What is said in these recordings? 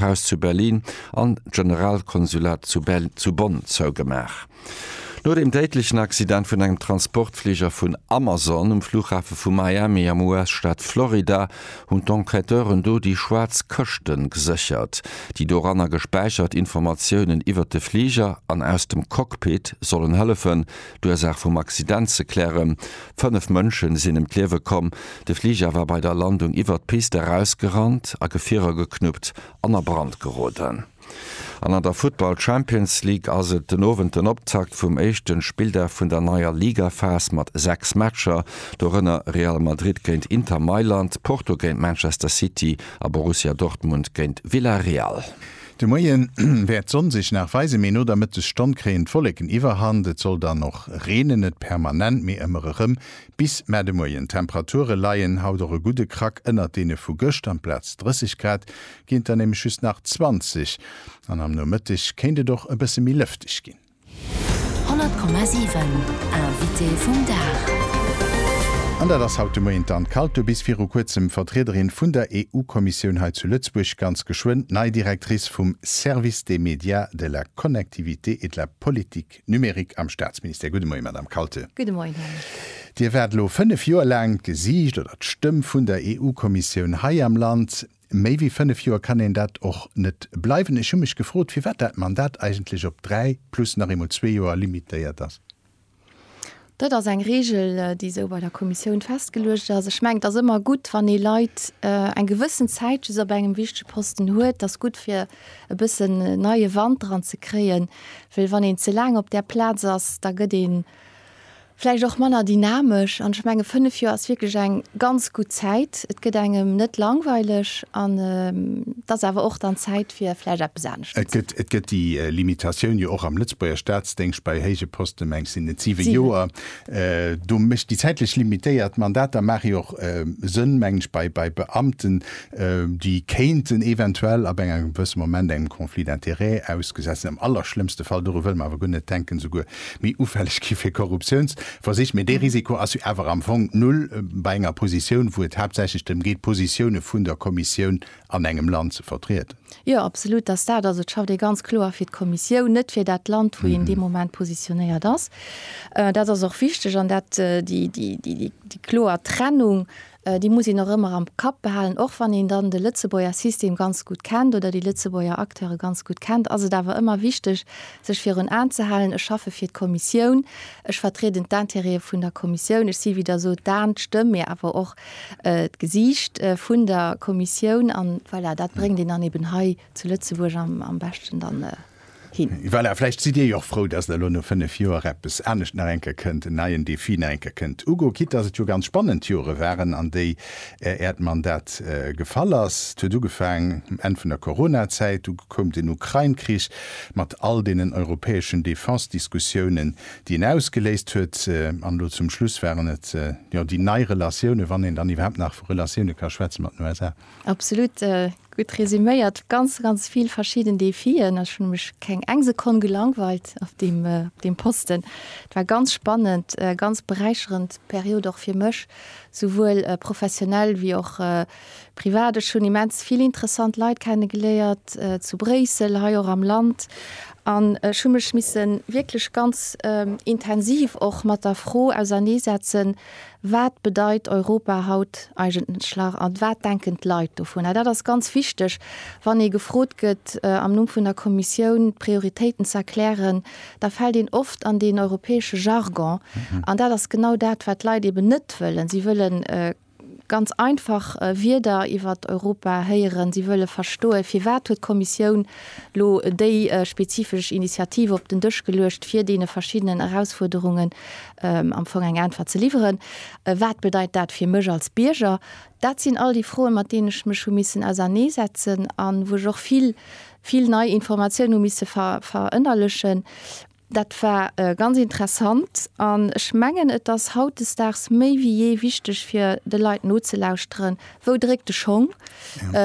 Haus zu Berlin an d'Generalkonsulat zu Bonn zougemaach. No dem déidlechen Accident vun engem Transportfliger vun Amazon um Flughafe vu Miami am US-Staat Florida hunn d'Enquêteuren do déi schwaarz Këschte geséchert. Déi doranner gespäichert Informatiounen iwwert de Fliger an aus dem Cockpit sollen hëllefen, D'Ursaach vum Accident ze klären. Fënnef Mënsche sinn ëm d'Liewe komm. De Fliger war bei der Landung iwwert d'Pist erausgerannt, a Gefierer geknuppt an a Brand geroden. An an der Futtball Champions League ass et den Owend den Optakt vum éischte Spilldag vun der neier Ligaphas mat 6 Matcher, dorënner Real Madrid géint Inter Mailand, Porto géint Manchester City a Borussia Dortmund géint Villarreal. De Moien wäert d'Sonn sech nach weisen, mee no der Mëttesstonn kréien d'Wolleken Iwwerhand. Et soll dann och reenen, net permanent, mee ëmmer erëm bis mar de Moien. D'Temperature leien haut och e gudde Krack ënnert deene vu gëscht, amplaz 30 Grad ginn et der nämlech just nach 20 an am Nomëtteg kéint et och e bësse méi lëfteg ginn. 100,7 Invité vum Dag. An dat ass haut de Moien d'Anne Kalto, bis viru kuerzem Vertriederin vun der EU-Kommissioun hei zu Lëtzebuerg, ganz geschwënn d'nei Directrice vum Service des médias, de la connectivité et de la politique numérique am Staatsministère. Gudde Moie, Madame Kalto. Gudde Moien, Här Micke. Dir waart elo fënnef Joer laang d'Gesiicht oder d'Stëmm vun der EU-Kommissioun hei am Land. Méi wéi fënnef Joer kann een dat och net bleiwen. Ech hu mech gefrot, firwat dat Mandat eigentlech op dräi plus nach eemol zwee Joer limitéiert ass. Dat ass eng Reegel, déi esou bei der Kommissioun festgeluecht ass. Ech mengen, et ass ëmmer gutt, wann ee Leit eng gewëssen Zäit just op engem wichtege Posten huet. Et ass gutt, fir e bëssen neie Wand dran ze kréien, well wann een ze laang op där Plaz ass, da gëtt ee vläicht och manner dynamesch an ech menge 5 Joer ass wierklech eng ganz gutt Zäit, et gëtt engem net langweileg an et ass awer och dann Zäit fir vläicht eppes anescht ze maachen. Et gëtt déi Limitatioun jo och am Lëtzebuerger Staatsdéngscht bei héije Posten, mengs sinn et 7 Joer, do mécht déi zäitlech limitéiert Mandater maache jo och Sënn, mengen ech, bei Beamten, déi kéinten eventuell ab engem gewësse Moment engem Conflit d'intérêt ausgesat sinn, am allerschlëmmste Fall, dorun wëlle mer awer guer net denken, esouguer méi ufälleg gi fir Korruptiounsversich. Mee dee Risiko ass jo awer am Fong null bei enger Positioun, wou et haaptsächlech drëm geet, d'Positioune vun der Kommissioun an engem Land ze vertrieden. Jo, absolut ass dat ass et. Schafft ee ganz kloer fir d'Kommissioun, net fir dat Land, wou een dee Moment positionéiert ass. Dat ass och wichteg an dat déi kloer Trennung Déi muss een och ëmmer am Kapp behalen. Och wann een dann de Lëtzebuerger System ganz gutt kennt oder déi Lëtzebuerger Acteure ganz gutt kennt, ass et awer ëmmer wichteg, sech virun Aen ze halen, Ech schaffe fir d'Kommissioun, ech vertrieden d'Intérêtë vun der Kommissioun, ech si, wéi Der sot, d'Aen, d'Stëmm, mee awer och d'Gesiicht vun der Kommissioun. An voilà, dat bréngt een dann eben hei zu Lëtzebuerg am beschten dann hin. Voilà, vläicht sidd Dir jo och frou, dass elo no fënnef Joer eppes anescht nach eng Kéier kënnt, en neien Defi nach eng Kéier kënnt ugoen, quitte dass et jo ganz spannend Jore waren, an déi Äert Mandat gefall ass. Et huet ugefaangen um Enn vun der Coronazäit, du koum den Ukrain-Krich mat all deenen europäeschen Defense-Diskussiounen, déi en ausgeléist huet, an elo zum Schluss waren et jo déi nei Relatiounen, wann een dann iwwerhaapt nach vu Relatioune ka schwätzen, mat den USA. Absolut gutt resuméiert, ganz ganz vill verschieden Defien. Ech hunn mech keng eng Sekonn gelangweilt op deem deem Posten. Et war ganz spannend, ganz beräicherend Period och fir mech, souwuel professionell wéi och privat. Ech hunn immens vill interessant Leit kenne geléiert zu Bréissel, hei och am Land, an ech hu mech misse wierklech ganz intensiv och mat der Fro auserneesetzen, Wat bedeit Europa haut eigentlech a wat denken d'Leit dovunner? Dat ass ganz wichteg, wann ee gefrot gëtt, am Numm vun der Kommissioun d'Prioritéiten ze erklären, da fält een oft an deen europäesche Jargon. An dat ass genau dat, wat d'Leit eben net wëllen. Si wëlle ganz einfach Wierder iwwer Europa héieren. Si wëlle verstoen, firwat huet d'Kommissioun elo déi spezifesch Initiative op den Dësch geluecht, fir deene verschiddenen Erausfuerderungen am Fong eng Äntwert ze liwweren, wat bedeit dat fir mech als Bierger? Dat sinn all déi Froen, mat deenen ech mech hu missen auserneesetzen a wou ech och vill, vill nei Informatiounen hu misse verënnerlechen. Dat war ganz interessant an ech mengen, et ass hautdesdaags méi wéi jee wichteg, fir de Leit nozelauschteren, Wou dréckt de Schong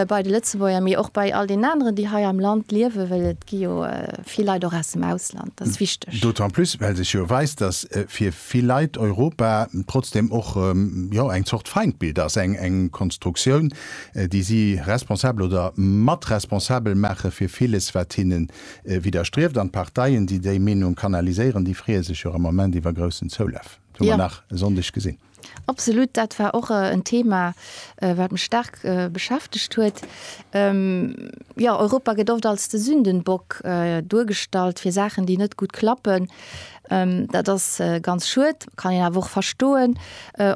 bei de Lëtzebuerger, mee och bei all deenen aneren, déi hei am Land liewen? Well et gi jo vill Leit och aus dem Ausland, dat ass wichteg. D'autant plus, well sech jo weist, datt fir vill Leit Europa trotzdeem och, jo, eng Zort Feindbild ass, eng Konstruktioun, déi si responsabel oder mat responsabel maache fir villes, wat hinne widderstrieft. An d'Parteien, déi déi Meenung kanaliséieren, déi freeë sech jo am Moment iwwer groussen Zoulaf, hu mer nach e Sonndeg gesinn. Absolut, dat war och en Thema, wat mech staark beschäftegt huet. Jo, Europa gëtt oft als de Sündenbock duergestallt fir Saachen, déi net gutt klappen. Dat ass ganz schued, kann een awer och verstoen.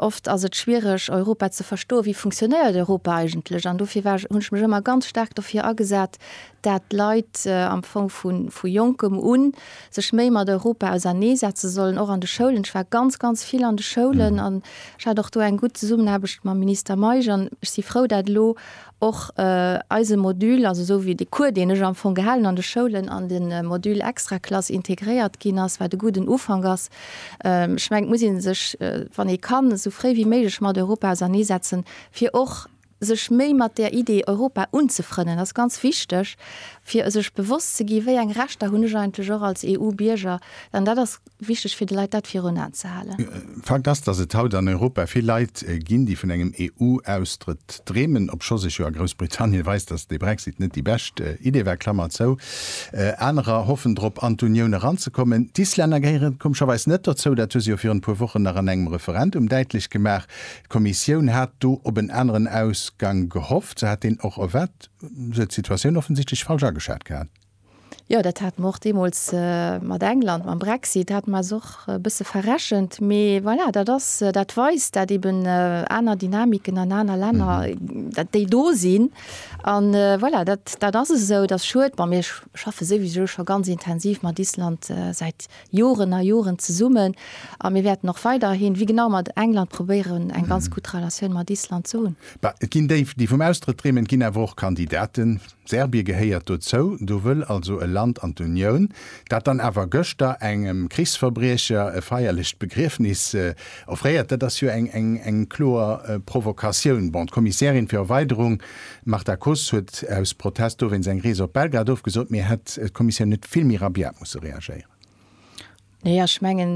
Oft ass et schwiereg, Europa ze verstoen, wéi funktionéiert Europa eigentlech? An dofir war ech, hunn ech mech ëmmer ganz staark dofir agesat, dat d'Leit am Fong vu jonkem u sech méi mat Europa ausernee setze sollen, och an de Schoulen. Ech war ganz, ganz vill an de Schoulen an ech hat och do eng gutt Zesummenaarbecht mam Minister Meisch an ech si frou, dat elo och eise Module, also esou wéi de Cours, deen ech am Fong gehalen an de Schoulen, an de Module Extraklass integréiert ginn ass, wat e gudden Ufank ass. Ech mengen, et muss ee sech, wann ee kann, esou fréi wéi méiglech mat Europa ausernee setzen, fir och Sech méi mat der Idee Europa unzefrënnen ass ganz wichteg, fir sech bewosst ze gi wéi eng Rechter hunn ech eigentlech och als EU-Bierger. An dat ass wichteg fir de Leit dat virun Aen ze halen. Fakt ass, datt et haut an Europa vill Leit ginn, déi vun engem EU-Austrëtt dreemen, obscho sech jo a Groussbritannien weist, datt de Brexit net déi bescht Idee war. Klammer zou. Anerer hoffen drop an d'Unioun eranzekommen. D'Islänner gehéieren komescherweis net dozou. Dat hu se jo virun e puer Wochen nach an engem Referendum däitlech gemaach. D'Kommissioun hat do op en aneren Ausgang gehofft. Se hat deen och erwaart. Se huet d'Situatioun offensichtlech falsch ageschat gehat. Jo, dat hate mer och deemools mat England, mam Brexit hate mer eis och e bësse verrechent. Mee voilà, dat ass, dat weist dat eeben aner Dynamiken an aner Länner, dat déi do sinn. A voilà, dat ass esou, et ass schued. Bon, mir schaffe souwisou scho ganz intensiv mat Island säit. Joren a Joren zesummen a mir wäerten och weiderhin, wéi genau mat England, probéieren eng ganz gutt Relatioun mat Island ze hunn. Bah, et ginn déi, déi vum Austrëtt dreemen, et ginn awer och Kandidaten. Serbie gehéiert dozou. Do wëll also e Land an d'Unioun, dat dann awer gëschter engem Krichsverbriecher e feierlecht Begriefnis offréiert. Dat ass jo eng kloer Provokatioun. Bon, d'Kommissärin fir Erweiderung D'Marta Koss huet aus Protest dowéinst eng Rees op Belgrad ofgesot. Mee hätt d'Kommissioun net vill méi rabiat musse reagéieren? Nee, ech mengen,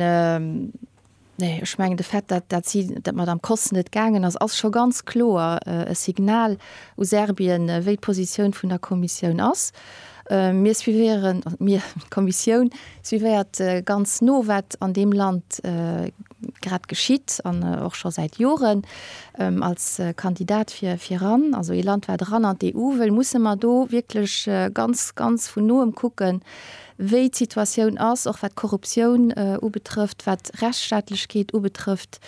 nee, ech mengen de Fait, dat, dat si, dat d'Madame Koss net gaangen ass, ass scho ganz kloer e Signal u Serbien, wéi d'Positioun vun der Kommissioun ass. Mir suivéieren, also mir, d'Kommissioun suivéiert ganz no, wat an deem Land, grad geschitt an och scho säit Joren als Kandidat fir fir ran, also ee Land wat ran an d'EU wëll, musse mer do wierklech ganz, ganz vun noem kucken, wéi d'Situatioun ass, och wat d'Korruptioun ubetrëfft, wat d'Rechtsstaatlechkeet ubetrëfft,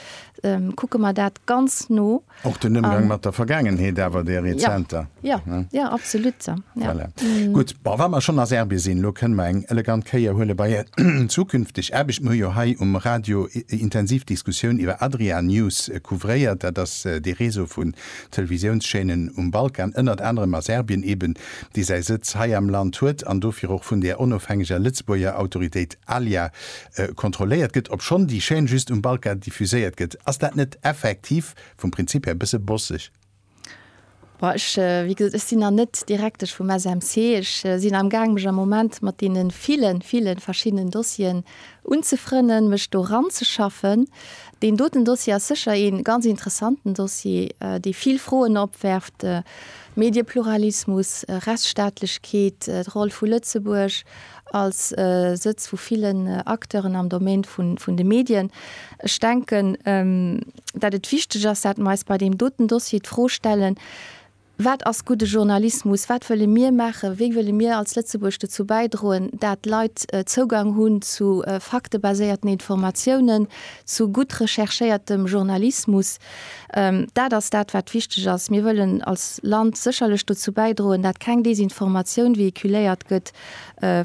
kucke mer dat ganz no. Och den Ëmgang mat der Vergaangenheet awer der rezenter. Ja, ja, ja. ja absolut. Ja. Voilà. Mm. Gut, bon, wa mer schonn a Serbien sinn, lo kënne mer eng elegant Kéier huele bei Är zukünfteg Aarbecht. Mir hu jo hei um Radio intensiv Diskussioun iwwer Adria News äh, couvréiert. Dat ass äh, de Réseau vun Televisiounschaînen um Balkan, ënnert anerem a Serbien eben, dee säi Sëtz hei am Land huet an dofir och vun där onofhängeger Lëtzebuerger Autoritéit Alia, kontrolléiert gëtt, obschonn déi Chaîne just um Balkan diffuséiert gëtt. Ass dat net effektiv vum Prinzip här e bësse bosseg? Boah, ech, wéi gesot, ech sinn nach net Direktesch vum SMC. Ech sinn am Gaang mech am Moment mat deene ville, ville verschiddenen Dossieren unzefrënnen, mech do ranzeschaffen. Deen doten Dossier ass sécher ee ganz interessanten Dossier, dee vill Froen opwerft, Mediepluralismus, Rechtsstaatlechkeet, d'Roll vu Lëtzebuerg. als Sëtz vu villen Acteuren am Domaine vun de Medien. Ech denken, datt et wichteg ass, datt mer eis bei deem doten Dossier d'Fro stellen, Wat ass gudde Journalismus? Wat wëlle mir maachen? Wéi wëlle mir als Lëtzebuerg dozou bäidroen, datt Leit Zougang hunn zu faktebaséierten Informatiounen, zu gutt recherchéiertem Journalismus? Dat ass dat, wat wichteg ass. Mir wëllen als Land sécherlech dozou bäidroen, datt keng Desinformatioun véhiculéiert gëtt.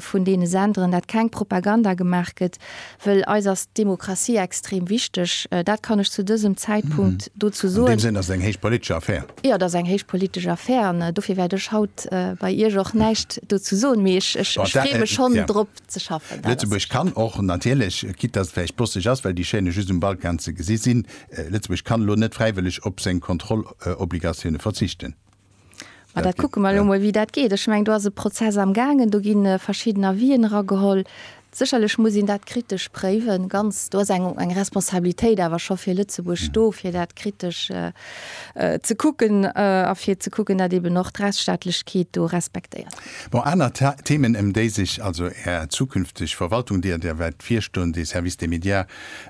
vun deene Senderen, dat keng Propaganda gemaach gëtt, wëll eis ass d'Demokratie extrem wichteg. Dat kann ech zu dësem Zäitpunkt dozou soen. An deem Sënn ass et eng héich politesch Affär. Jo, et ass eng héich politesch Affär an dofir wäert ech haut bei Iech och näischt dozou soen, mee ech freeë mech schonn drop ze schaffen. Lëtzebuerg kann och natierlech, quitte dass et vläicht bosseg ass, well déi Chaînë just um Balkan ze gesi sinn, Lëtzebuerg kann elo net fräiwëlleg op seng Kontrollobligatioune verzichten. Ma dat kucke mer elo mol, wéi dat geet. Ech mengen, do ass e Prozess amgaangen, do gi verschidden Avisen erageholl. Sécherlech muss een dat kritesch préiwen, ganz. Do ass eng, eng Responsabilitéit awer scho fir Lëtzebuerg do, fir dat kritesch ze kucken a fir ze kucken, datt eeben och d'Rechtsstaatlechkeet do respektéiert. Bon, aner Themen, ëm déi sech also Är zukünfteg Verwaltung, déi Der wäert virstoen, de Service des médias,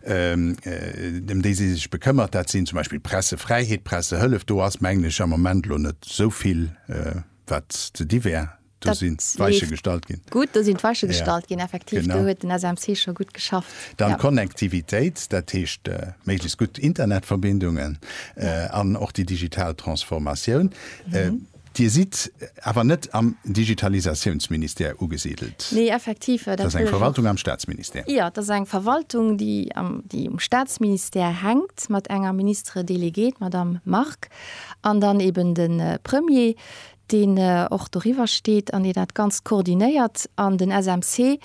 ëm déi si sech bekëmmert, dat sinn zum Beispill Pressefräiheet, Pressehëllef. Do ass, mengen ech, am Moment elo net esou vill, wat ze di wär. Do sinn d'Weiche gestallt ginn. Gutt, do sinn d'Weiche gestallt ginn, effektiv. Do huet den SMC scho gutt geschafft. Dann d'Connectivitéit, dat heescht méiglechst gutt Internetverbindungen an och déi digital Transformatioun. Dir sidd awer net am Digitalisatiounsministère ugesidelt. Nee, effektiv. Dat ass eng Verwaltung am Staatsministère. Jo, dat ass eng Verwaltung, déi um Staatsministère hänkt, mat enger Ministre déléguée, d'Madame Margue, an dann eben de Premier, deen och doriwwer steet an dee dat Ganzt koordinéiert. An den SMC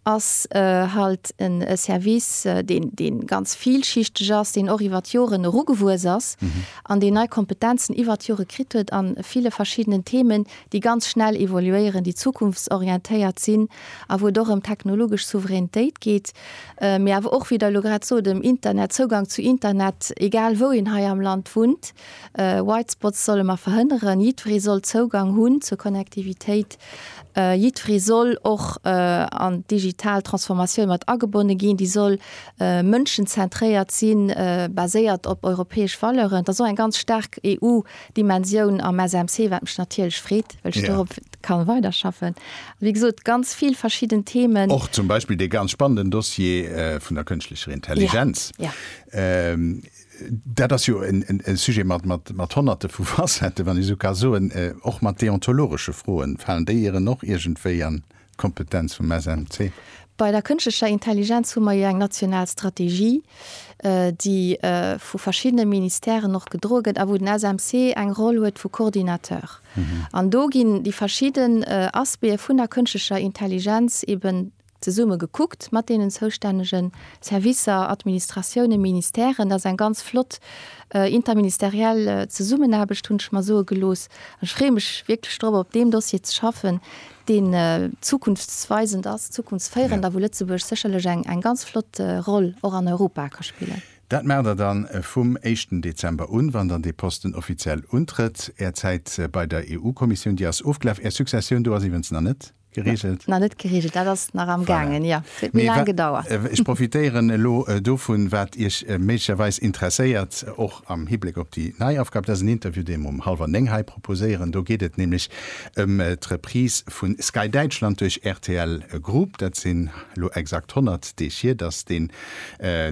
ass halt en Service, deen, deen ganz vielschichteg ass, deen och iwwer d'Joren erugewuess ass an deen nei Kompetenzen iwwer d'Jore kritt huet a ville verschiddenen Themen, déi ganz schnell evoluéieren, déi zukunftsorientéiert sinn a wou et och ëm technologesch Souveränitéit geet, mee awer och, wéi Der elo grad sot, ëm Internet, Zougang zu Internet, egal wou een hei am Land wunnt. White Spots solle mer verhënneren, jiddweree soll Zougang hunn zur Connectivitéit, jiddweree soll och an d'digital Transformatioun mat agebonne ginn, déi soll mënschenzentréiert sinn, baséiert op europäesch Valeuren. Et ass och eng ganz staark EU-Dimensioun am SMC, wat mech natierlech freet, well ech dorop ka weiderschaffen. Wéi gesot, ganz vill verschidden Themen. Och zum Beispill dee ganz spannenden Dossier vun der kënschtlecher Intelligenz. Dat ass jo e Sujet mat Honnerte vu Facetten, wann ech esou ka soen. Och mat deontologesche Froen, falen déi Ieren och iergendwéi an d'Kompetenz vum SMC? Bei der kënschtlecher Intelligenz hu mer jo eng national Strategie, déi vu verschiddene Ministèren och gedroe gëtt a wou den SMC eng Roll huet vu Coordinateur. An do ginn déi verschidden Aspecte vun der kënschtlecher Intelligenz eben Zesumme gekuckt mat deenen zoustännege Servicer, Administratiounen, Ministèren, dat ass eng ganz flott interministeriell Zesummenaarbecht, hunn ech mer soe gelooss. An ech freeë mech wierklech drop, op deem Dossier ze schaffen, deen zukunftsweisend ass, zukunftsféierend a wou Lëtzebuerg sécherlech eng ganz flott Roll och an Europa ka spillen. Dat maacht Der dann vum éischten Dezember un, wann Der dee Posten offiziell untrëtt. Är Zäit bei der EU-Kommissioun, déi ass ofgelaf. Är Successioun do ass iwwens nach net Geregelt? Na, net geregelt, dat ass nach am Gaangen, jo. Et huet méi laang gedauert. Ech profitéieren elo dovun, wat Iech méiglecherweis interesséiert, och am Hibléck op déi nei Aufgab. Dat ass en Interview, dee mer um hallwer néng hei proposéieren. Do geet et nämlech ëm d'Reprise vu Sky Däitschland duerch rtl Group. Dat sinn elo exakt 100 Deeg hier, datt deen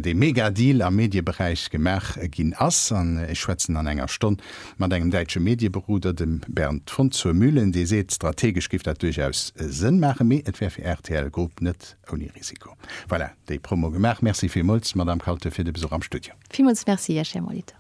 dee Mega-Deal am Medieberäich gemaach ginn ass. An ech schwätzen an enger Stonn mat engem däitsche Medieberoder, dem Bernd von Zurmühlen, dee seet, strategesch géif dat duerchaus Sënn maachen, mee et wär fir rtl Group net ouni Risiko. Voilà, déi Promo gemaach. Merci villmools, Madamm Kalte, fir de Besuch am Studio. Villmools merci Iech, Här Molitor.